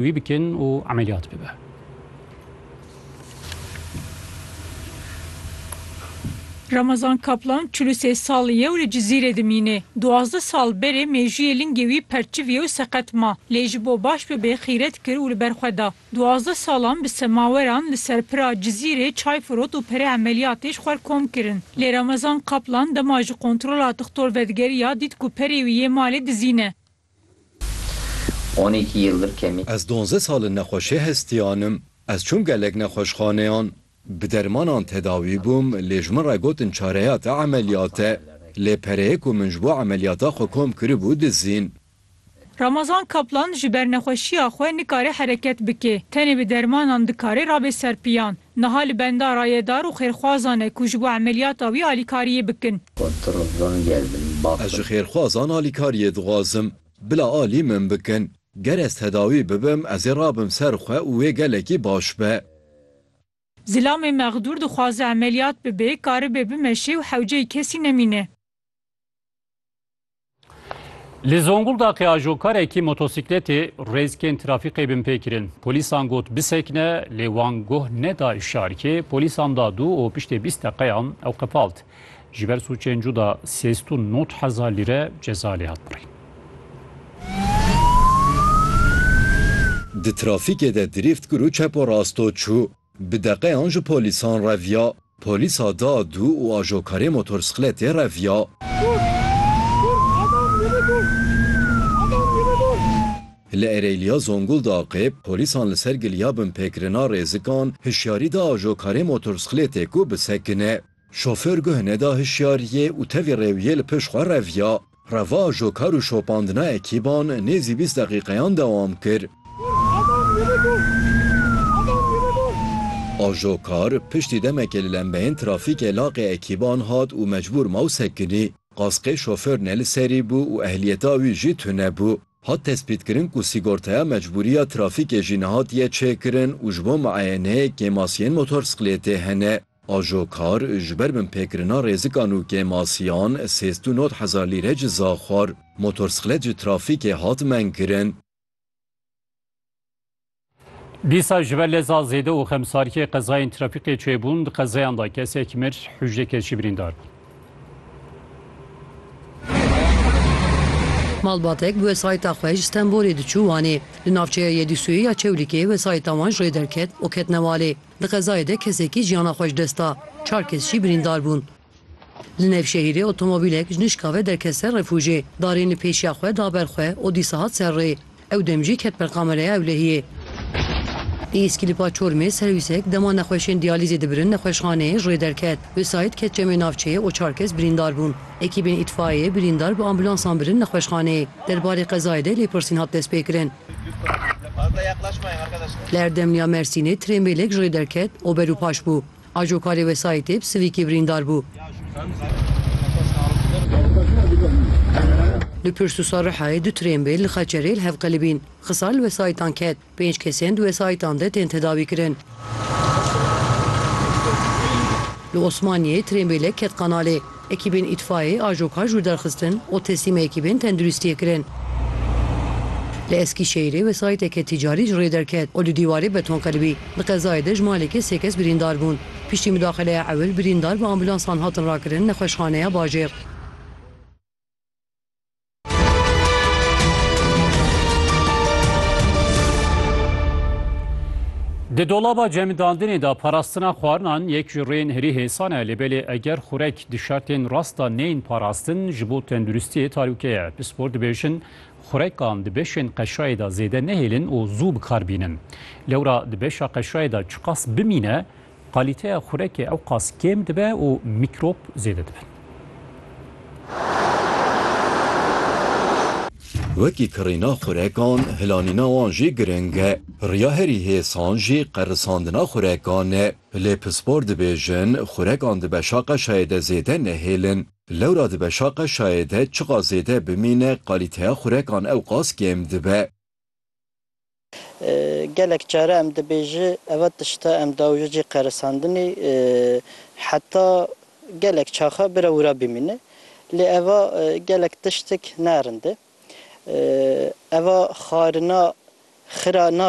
Wî bikin û emeliyat bibe. Ramazan Kaplan çil û sê sal ye û li Cizîrê dimîne. Duwazdeh sal berê mêjûyê lingê wî perçiviye û seqet ma. Lê ji bo baş bibe xîret kir û li ber xwe da. Duwazdeh salan bi semaweran li ser pira Cizîrê çay firot û perê emeliyatê ji xwer kom kirin. Lê Ramazan Kaplan dema ji kontrola dixtor vedigeriya dît ku perê wî yê malê dizî ne. On iki yıldır kemi. Ez donze sal in nexweşê hestiyan im. Ez çûm gelek nexweşxaneyan. Bi dermanan tedawî bûm lê ji min re gotin çareya te emeliyat e. Lê pereyê ku min ji bo emeliyata xwe kom kiribû dizîn. Ramazan Kaplan ji ber nexweşiya xwe nikare hereket bike. Tenê bi dermanan dikare rabe ser piyan. Niha li benda rayedar û xêrxwazan e ku ji bo emeliyata wî alîkariyê bikin. Ez ji xêrxwazan alîkariyê dixwazim. Bila alî min bikin. Ger ez tedawî bibim ez ê rabim ser xwe û wê gelekî baş be. Zilamê mexdûr dixwaze emeliyat bibe, karibe bimeşe û hewceyî kesî nemîne. Li Zonguldakê ajokarekî motosîkletê rêzkên trafîkê bin pê kirin. Polîsan got bisekine lê wan guh neda îşarkê, polîsan da dû û piştê bîst deqeyan ew qefalt. Ji ber sûcên cuda sêst û not hezar lîre ceza lê hat birîn. Di trafîkê de dirîft kir û çepo rasto çû. Bi deqeyan ji polîsan reviya. Polîsa da dû û ajokarê motorsikletê reviya. Li Ereyliya Zonguldaqê polîsan li ser giliya binpêkirina rêzikan hişyarî da ajokarê motorsikletê ku bisekine. Şofêr guh neda hişyariyê û tevî rêwiyê li pêş xwe reviya. Reva ajokar û şopandina ekîban nêzî bîst deqîqeyan dewam kir. Ajokar piştî demekê li lembeyên trafîkê laqê ekîban hat û mecbûr ma û sekinî. Qaskê şofêr ne li serî bû û ehliyeta wî jî tune bû. Hat tespîtkirin ku sîgortaya mecbûriya trafîkê jî nehatiye çêkirin û ji bo miayeneyê kêmasiyên motorsiklêtê hene. Ajo kar ji ber binpêkirina rêzikan û kêmasiyan sêst û nod hezar lîre ciza xwar. Motorsixlet ji trafîkê hat mengkirin. Dîsa ji ber leza zêde û xemsariyê qezayên trafîkê çêbûn, di qezayan de kesek mir, hûjdeh kes jî birîndar bûn. Malbatek bi wesayîta xwe ji Stenbolê diçû Wanê. Li navçeya Yedîsoyê ya Çewlîgê wesayîta wan ji rê derket û ketine Walê. Di qezayê de kesekî jiyana xwe ji dest da, çar kes jî birîndar bûn. Li Nevşehîrê otomobîlek ji nişka ve derket ser refûjê, darên li pêşiya xwe da ber xwe û dîsa hat ser rê. Ew dem jî ket ber kamereya ewlehiyê. Li Îskilipa Çormê serwîsek dema nexweşên diyalîzê dibirin nexweşxaneyê ji rê derket. Wesayît ket çemê navçeyê û çar kes birîndar bûn. Ekîbên îtfaiyeyê birîndar bi ambulansan birin nexweşxaneyê. Derbarê qezayê de lêpirsîn hat destpêkirin. Li Erdemliya Mersînê trênbêlek ji rê derket û ber û paş bû. Ajo karê wesayîtê bi sivîkê birîndar bû. Li pirsûsa Rihayê du trênbêl li Xeçerê li hev qelibîn. Xisar li wesayîtan ket. Pênc kes yên di wesayîtan de tên tedawîkirin. Li Osmaniyê trênbêlek ket qanalê. Ekîbên îtfayê ajo kar jûr derxistin û teslîmê ekîbên tenduristiyê kirin. Li Eskîşehîrê wesayîteke tîcarî ji rê derket û du dîwarê beton qiribî. Di qezayê de ji malekê sê kes birîndar bûn. Piştî mudaxileya ewil birîndar bi ambulansan hatin rakirin nexweşxaneya bajêr. Di dolaba cemidandinê de parastina xwarinan yek ji rêyên herî hêsan e lê belê eger xurek di şertên rast de neyên parastin ji bo tenduristiyê talûke ye. Pispor dibêjin xurekan di beşên qeşayê de zêde nehêlin û zû bikar bînin. Lewra di beşa qeşayê de çiqas bimîne Kalîteya xurekê ewqas kêm dibe û mîkrop zêde dibin. Wekî kirîna xurekan, hilanîna wan jî giring e. Riya herî hêsan jî qerisandina xurekan e. Lê pispor dibêjin, xurekan di beşa qeşayê de zêde nehêlin. Lewra di beşa qeşayê de çiqas zêde bimîne kalîteya xurekan ewqas kêm dibe. Gelek care em dibêji eva tişta em dawije cî qerisandinî heta gelek çaxa bira wira bimîne. Lê eva gelek tiştik ne rind e. Eva xarina xira na.